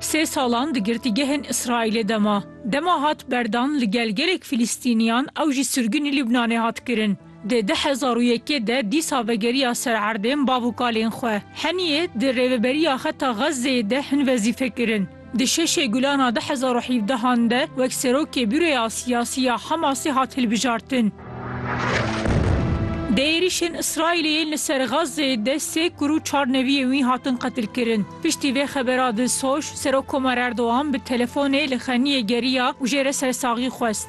Sê salan di girtîgehên Îsraîlê de ma. Dema hat berdan li gel gelek Filîstîniyan ew jî sirgûnê Lubnanê hat kirin. Di du hezar û yekê de dîsa vegeriya ser erdên bav û kalên xwe. Heniyê di rêveberiya xeta Xezzeyê de hin wezîfe kirin. Di şeşê gulana du hezar û hevdehan de wek serokê Bûroya Siyasî ya Hamasê hat hilbijartin. Di êrîşên Îsraîlê yên li ser Xazzê de sê kur û çar neviyên wî hatin qetilkirin. Piştî vê xebera di soş, Serok Komar Erdogan bi telefonê li Xeniyê geriya û jê re sersaxî xwest.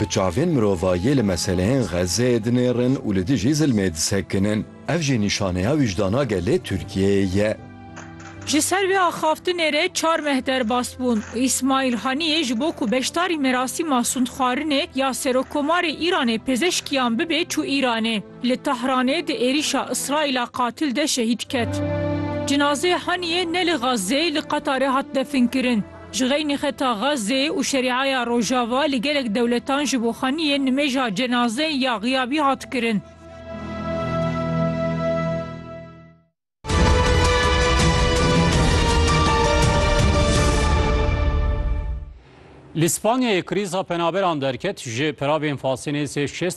Bi çavên mirovayî li meseleyên Xezzeyê dinêrin û li dijî zilmê disekinin. Ev jî nîşaneya wijdana gelê Tirkiyeyê ye. Ji ser vê axaftinê re çar meh derbas bûn û Îsmaîl Haniyê ji bo ku beşdarî merasîma sûndxwarinê ya Serokomarê Îranê pizîşkiyan bibe çû Îranê. Li Tahranê di êrîşa Îsraîla qatil de şehîd ket. Cinazeyê Haniyê ne li Xezzeyê li Qetarê hat definkirin. Ji xeynî xeta Xazzê û Şerîaya Rojava li gelek dewletan ji bo xaniyên nimêja cenaze ya xiyabî hat kirin. Li Spanyayê krîza penaberan derket, ji peravên fasê nêzî şêst